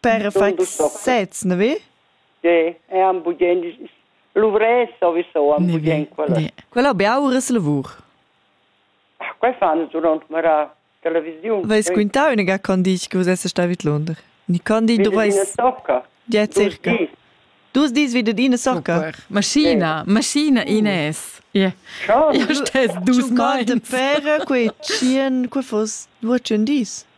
Per far sez, ne vi? Sì, e am bugien luvres o visoam bugien quella. Quella beaur es lavur. Quai fan durant mera televisiun. Vais quintà ünaga con dici che vus essest sta vid Londra? Ni con di doveis Ja circa. Dus dis vi dad ina socca. Maschina, maschina Ines. Ja. Ja stess dus mai. De per quei tschien, que fos duo tschien dis.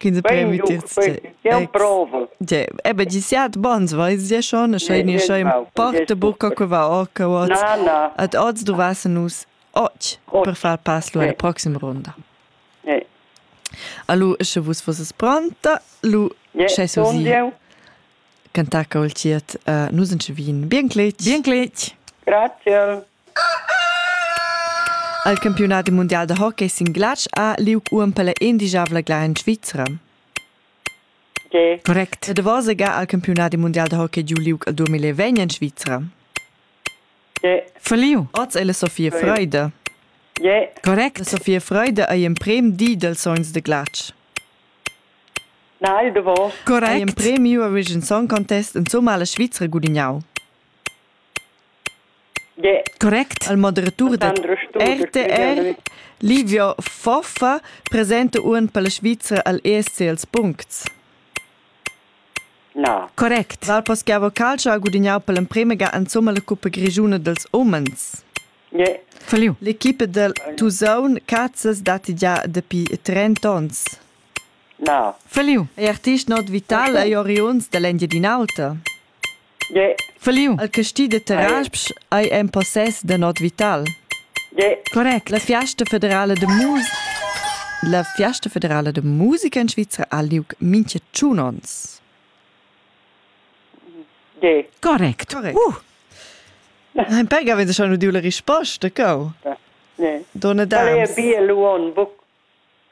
Quinza prem vitier Jau provo. Ebe gi siat bans vais sia schon, scha ei scha in parte bucca que va or che oz. Ad oz dovassen nus och per far pass alla proxima ronda. Allo, sche vus fosses pronta, lu sche sosi. Cantar col tiet, nus en vin. Bien cletg. Bien cletg. Grazie. Il campiunadi mundial da hockey sin glatsch ha liug uonn per la endischavla glar en Svizra. Correct. E davos ga ha il campiunadi mundial da hockey giu liug el 2020 en Svizra. Verliu. Oz è la Sofia Freude. Correct. La Sofia Freude ei emprem di dels sogns de glatsch. Nein, da was? Correct. Ei emprem Eurovision Song Contest in Somala Svizra gudignau. Correct. Il moderatur da RTR, Livio Foffa, presenta uan per la Svizra al ESC als puncts. Na. Correct. Val Paschiavo Calcio ha gudignau per l'emprema ga insomma la cuppa grigiuna dels umens. Yeah. Falliu. L'equipa del Tusaun Cazzas datti già dapi 30 onns. Na. Falliu. È artist not vital ai oriunds dall'Engiadin'Alta? Feliu. El casti de Tarasp ei en possess da not vital. Correct. La fiasta federala de musica La fiasta federala de musica in Svizra ha liug mintga tschun onns. Correct. Uh. Nein, pega wenn schon udiu la risposta, cau. Donna Dams. Bia lu on buc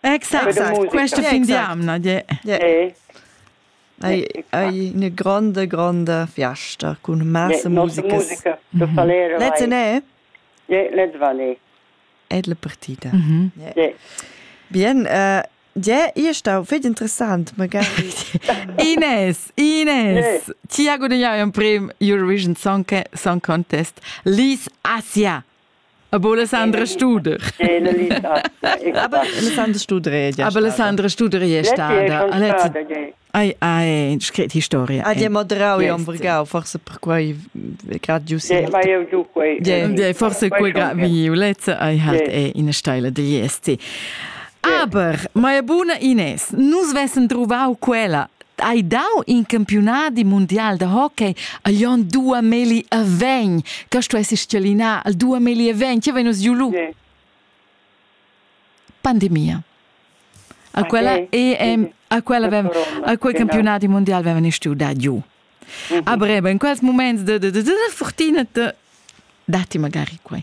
Exact, exact. Questa fin di amna, yeah. yeah. Hai, hai eine grande, grande fiesta con massa musica. musica mm -hmm. Valero, Letzte ne? Ja, let's Valé. È la partita. Mm -hmm. yeah. yeah. Bien, uh, ja, ist auch viel interessant. Ines, Ines, ti ha guadagnato un premio Eurovision Song, Song Contest Liz Asia. Aber Alessandra Studer. Aber Alessandra Studer è già Aber Alessandra Studer è stata. Ai, ai, scrit historia. Ah, di Madrau e Ombrigau, forse per quei gradius. Vai eu giù quei. Forse quei gradiulezza ai halt è in steile degli esti. Aber, Maia buna Ines, nus vessen truvau quella Hai dau in campiunadi mundial da hockey a Glion dua meli a vegn. Questo è schialina al dua meli a vegn. Che vegn giu lu? Sì. Pandemia. A quella EM, a quella avem, a quel campionati mondial avevano studiato giù. Mhm. A breve, in quels momenti de, de, de, de fortuna, de, dati magari qua.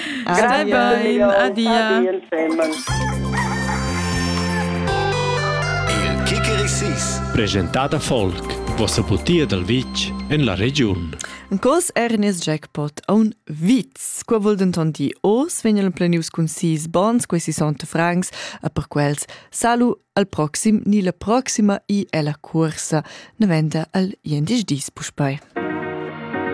Scabain, adia. Il Kikerisis. Presentada Folk, vossa butia dal vitg en la regiun. Cos Ernest Jackpot a un vits. Qua vul denton dir oz vegnan plenius cun sis bons, quei si sont francs, e per quels salu al proxim ni la proxima i ella cuorsa, ne venda al jendisch dis puspei.